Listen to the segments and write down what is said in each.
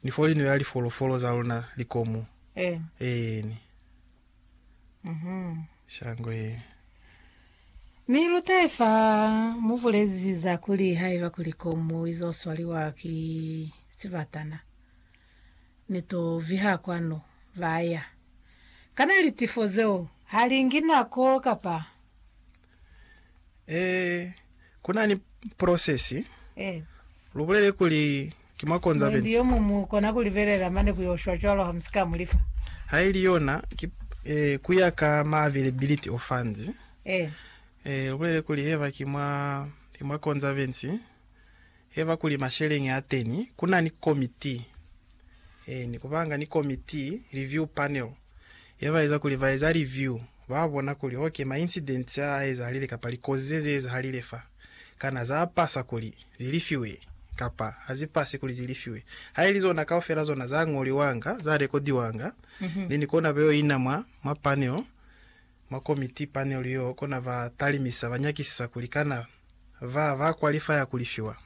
Ni foli ni beha lifolofolo za luna likomu. Eh. Eh, ni. Mhm. Shango ye. Mi lutahe fa mu bulezi za kuli haiba kuli komu izo swaliwa ki sibatana, ni to viha kwanu. Ba ya. Kana litifo zeo ha lingi nako kapa? Ee, ku na ni prosesi. Ee. Lu bulele kuli, Ki mwa konza Muindi benzi. yo muñwi mu kona ku libelela mane ku yo shwa cwalo ha mu si ka mu lifa. Ha ili yona, ki, ee, ku ya ka ma availability o funds. Ee. Ee, lu bulele kuli, Heba, ki mwa, ki mwa konza benzi. heba kuli masheleñi a teni ku na ni komiti e ni ku banga ni komiti, review panel, ye ba eza kuli ba eza review ba bona kuli ok ma incidents a a ezahalile kapa likozi ze ze ezahalile fa kana za pasa kuli zi lifiwe kapa ha zi pasi kuli zi lifiwe. Ha ili zona kaufela zona za ñoliwanga, za rekodiwanga, then kona ba yo ina mwa, mwa panel. Mwa komiti, panel, yo kona ba talimisa ba nyakisisa kuli kana ba ba kwalifaya ku lifiwa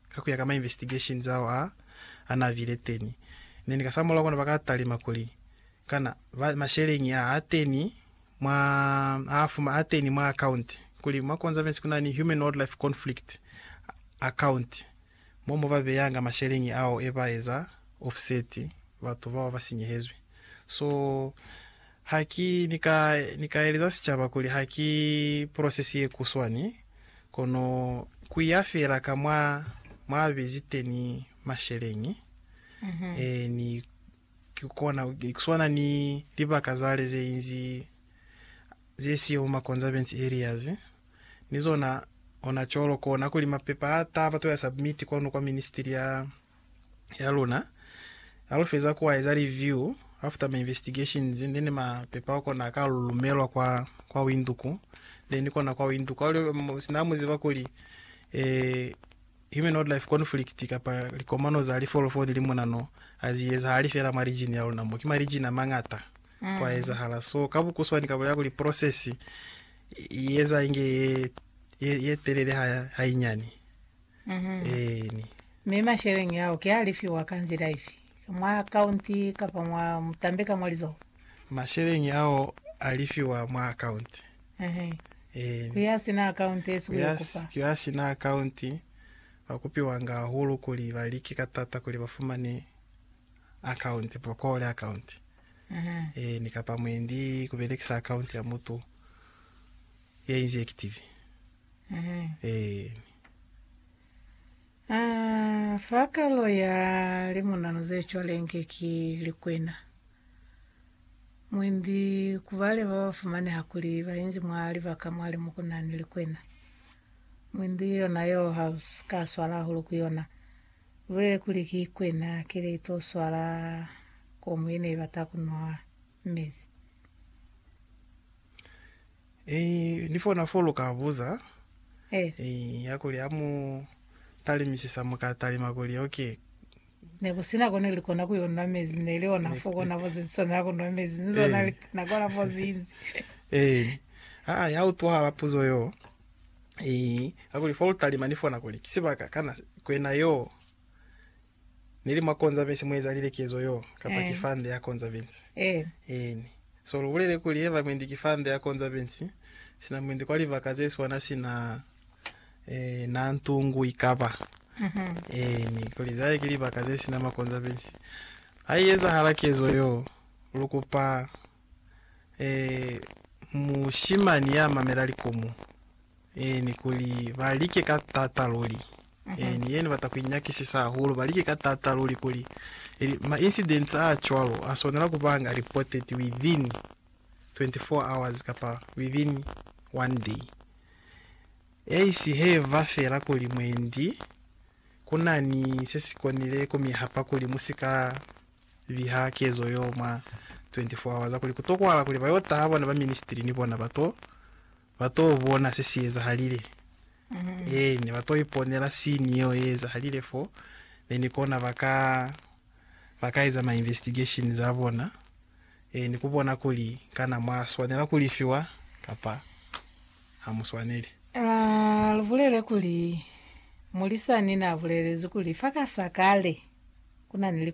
ka kuya ka ma investigation zao a a na bile teni, then ka sa mulaho kona ba ka talima kuli kana ba masheleñi a a teni mwa a fuma a teni mwa account kuli mwa conservancy kuna ni human wildlife conflict account. mo mu ba beyanga masheleñi ao e ba eza offset batu bao ba sinyehezwi. So, ha ki ni ka, ni ka eleza sicaba kuli ha ki process ye kuswani, kono ku ya fela ka mwa, mwa bezi teni masheleñi, e, ni ki kona, ki kuswana ni libaka zale ze inzi ze siyo mu ma conservance areas. ni zona ona colo kona kuli mapepa a taba to ya submit kwanu kwa ministry ya ya luna ha lu feza ku a eza review after ma investigations then mapepa kona ka lu lumelwa kwa kwa Windhoek then kona kwa Windhoek ha lu sina mu ziba kuli eh human wildlife conflict kapa likomano za lifolofoni li monano a zi ezahali fela mwa region ya luna mo ki ma region a mangata kwa ezahala so ka bukuswani kabo ya kuli process i eza inge ye ye, ye telele ha hainyani mm-hmm. eni mi masheleñi yao ke a lifiwa ka nzila ifi mwa akaunti kapa mwa mutambe ka mwa lizoho masheleñi ao a lifiwa mwa akaunti mm-hmm. eni ku ya sina akaunti esu yo kupa ku ya sina akaunti ba kupiwa nga hahulu kuli ba like ka tata kuli ba fumane account prokole account mm-hmm. e, ni kapa mwendi kubelekisa account ya mutu ya inzi active mm-hmm. e. Ah, fakalo ya limunano ze cwalenge ki likwena mwendi kubale ba bafumane hakuli bainzi mwa libaka mwali mukunani likwena mwendi yona yo house kaswala hulu ku yona Lwe kuli ki kwena kile to swala komu yene ibata kunwa mezi. Eyi ni fona fo lu ka buza Eyi ya kuli ha mu talimisisa mu ka talima kuli ok. Ne ku sina ko ne li kona ku yo nwa mezi, ne li ona fo kona fo ze swanela ku nwa mezi ni zona li kona kona fo zinzi. Eyi aa ya utwahala puzo yo. Ii, kakuli fa lutalima ni fona kuli ki sibaka kana kwena yo ni li mwa konzavesi mu ezalile kezo yo, kapa ki fa nde ya konzavesi. Eni, so lu bulele kuli heba mwendi ki fa nde ya konzavesi, sina mwendi kwa libaka ze swana sina ee, na ntungu ikaba. Eni, kuli za ki libaka ze sina makonzavesi. Ha i ezahala kezo yo, lu kupa ee, mushimani ya mamela likomu, ee, ni kuli ba like ka tata luli. Ee, ni yena bata kuinyakisisa hahulu, ba like ka tata luli kuli ili ma incidents a cwalo a swanela kubanga reported within 24 hours kapa within one day. Eisi he va fela kuli mwendi Ku na ni se si konile ku mi hapa kuli mu si ka biha kezo yo mwa 24 hours, kuli ku tokwahala kuli ba y'o taha bona ba ministry ni bona ba to, ba t'o bona se si ezahalile. Ee, ne ba t'o iponela scene yeo ye ezahalile fo, then ki kona ba ka, ba ka eza ma investigations a bona, ee, ni ku bona kuli kana mwa swanela ku lifiwa kapa. ha mu swaneli. A lu bulele kuli, Mulisani n'a bulelezi kuli fa ka sa kale ku na ni likweto.